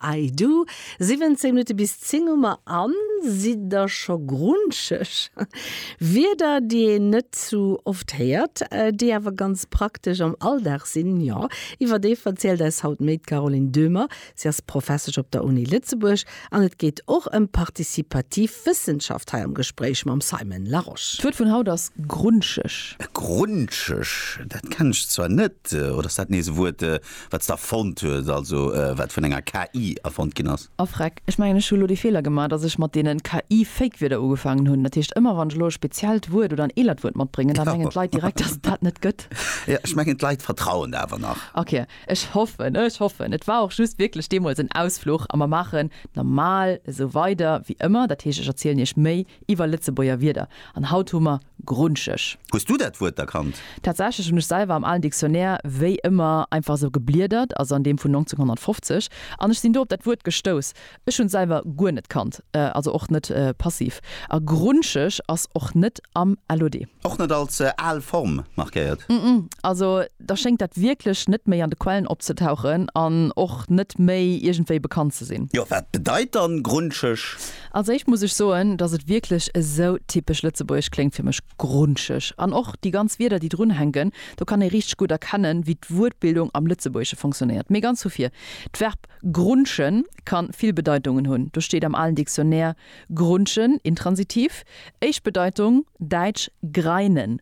I do, 17 Minutte bis 10 hu mer an sidd der scho grunscheg? Wierder, déi een net sou oft héiert, déi awer ganz praktesch am Alldag sinn, jo, iwwer déi verzielt eis haut méi d'Caroline Döhmer. Si ass Professesch op der Uni Lëtzebuerg an et geet och ëm participativ Wëssenschaft hei am Gespréich mam Simon Larosche. D'Wuert vun haut ass grunscheg. Grunscheg, dat kennen ech zwar net. Oder ass dat nees e Wuert, wat se erfonnt huet, also wat vun enger KI erfonnt ginn ass. A Freck, ech mengen, ech hu lo dee Feeler gemaach, datt ech mat deenen KI-Fake-Wierder ugefaangen hunn. Dat heescht, ëmmer wann ech elo e speziellt Wuert oder en eelert Wuert matbréngen, da mengen d'Leit direkt, datt et dat net gëtt. Jo, ech mengen d'Leit vertrauen der awer nach. Ok, ech hoffen, ech hoffen. Et war och just wierklech deemools en Ausfluch a mer maachen normal esou weider wéi ëmmer. Dat heescht, ech erzielen Iech méi Iwwer Lëtzebuerger Wierder, an haut hu mer grunscheg. Hues du dat Wuert erkannt? Tatsächlech hunn ech selwer am alen Dictionnaire wéi ëmmer einfach esou gebliedert, also an deem vun 1950, an ech sinn do op dat Wuert gestouss. Ech hunn selwer guer net kannt, also och net passiv. A grunscheg ass och net am LOD. Och net als al Form markéiert? Ëmm, also da schéngt dat wierklech net méi an de Quellen opzetauchen an och net méi iergendwéi bekannt ze sinn. Jo, wat bedeit dann grunscheg? Als éischt muss ech soen, dass et wierklech esou typesch lëtzebuergesch kléngt fir mech, grunscheg. An och déi ganz Wierder, déi drun hänken, do kann ee richteg gutt erkennen, wéi d'Wuertbildung am Lëtzebuergesche fonctionnéiert. Mee ganz vu vir, d'Verb grunschen ka vill Bedeitungen hunn. Do steet am alen Dictionnaire grunschen, Intransitiv, éischt Bedeitung, däitsch greinen,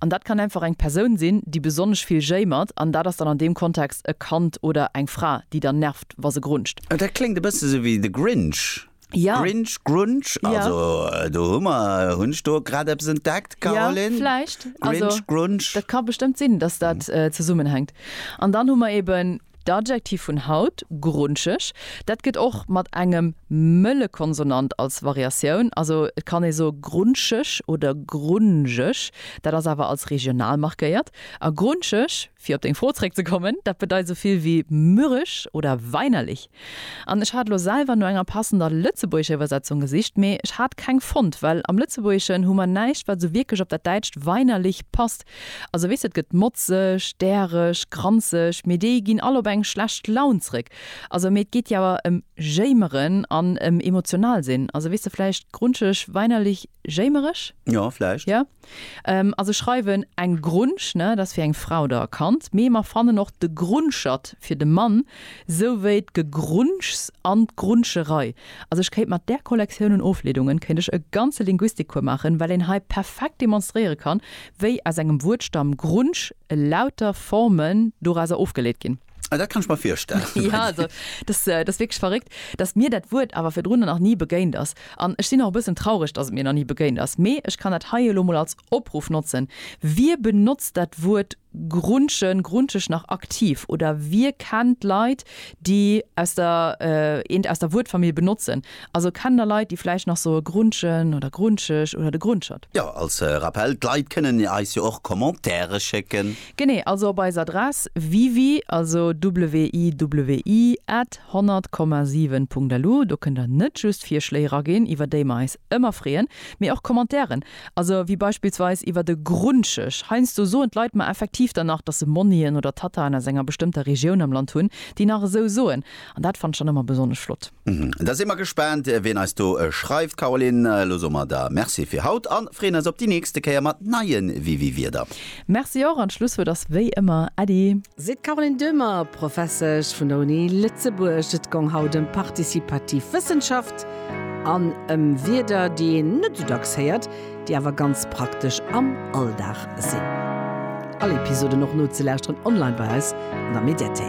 An dat kann einfach eng Persoun sinn, déi besonnesch vill jéimert, an dat ass dann an deem Kontext e Kand oder eng Fra, déi dann nervt, wa se grunzt. Oh, dat kléngt e bësse sou wéi The Grinch. Ja. Grinch, Grunch, Ja. also do hu mer, hunn ech do grad eppes entdeckt, Caroline? Ja, vläicht. Also, Grinch, Grunch. dat ka bestëmmt sinn, dass dat zesummenhänkt. An dann hu mer eben. D'Adjektiv vun haut, grunscheg, dat gëtt och mat engem mëlle Konsonant als Variatioun, also et kann ee soe grunscheg oder grunjeg, dat ass awer als regional markéiert. A grunscheg, fir op deng Fro zréckzekommen, dat bedeit esou vill wéi mürrisch oder weinerlich. An ech hat lo selwer no enger passender lëtzebuergescher Iwwersetzung gesicht, mee ech hat keng fonnt, well am Lëtzebuergeschen hu mer näischt, wat esou wierklech op dat däitscht weinerlich passt. Also weess, et gëtt motzeg, däreg, granzeg, mee déi ginn all op eng schlecht Laun zréck. Also mee et geet jo awer em jéimeren an em emotional sinn. Also weess de, vläicht grunscheg, weinerlich, jéimereg? Jo, vläicht. Jo. Also schreiwen eng Grunsch, ne, dat ass fir eng Frau oder e Kand, mee mer fannen och de Grunschert fir de Mann. Sou wéi d'Gegrunschs an d'Grunscherei. Also ech kéint mat där Kollektioun un Ofleedungen kéint ech e ganze Linguistikcours maachen, well een hei perfekt demonstréiere kann, wéi aus engem Wuertstamm Grunsch elauter Formen dorauser ofgeleet ginn. Ah, dat kann ech mer virstellen. Jo, also dass, dat ass wierklech verréckt, dass mir dat Wuert awer virdrun nach ni begéint ass. An ech sinn och e bëssen traureg, dass et mir nach ni begéint ass. Mee ech kann dat hei elo mol als Opruff notzen, Wie benotzt dat Wuert Grunschen, Grunscheg nach aktiv oder wie kennt Leit déi aus der eent aus der Wuertfamill benotzen? Also kennt der Leit déi vläicht nach soe Grunschen oder Grunscheg oder de Grunschert? Jo, als Rappel, d'Leit kënnen eis jo och Commentaire schécken. Genee, also op eis Adress wiwi, also WIWI at 100, 7 Punkt lu. Do kënnt der net just Virschléi eraginn, iwwer déi mer eis ëmmer freeën, mee och Commentairen. Also wéi beispillsweis iwwer e Grundschisch. Heiansdo soen d'Leit mer effektiv dann nach, dass se Monnien oder Tataen aus enger bestëmmter Regioun am Land hunn, déi nach esou soen. An dat fannt ech dann ëmmer besonnesch flott. Da si mer gespaant, wien eis do schreift. Caroline, elo soe mer der Merci fir haut a freeën eis op déi nächste Kéier mat neie Wiwi-Wierder. Merci och, an d'Schlusswuert ass wéi ëmmer Äddi. Seet d'Caroline Döhmer, Professesch vun der Uni Lëtzebuerg. Et gong haut ëm partizipativ Wëssenschaft an ëm Wierder, déi een net esou dacks héiert, déi awer ganz praktesch am Alldag sinn. All Episoden och nozelauschteren online bei eis an der Mediathéik.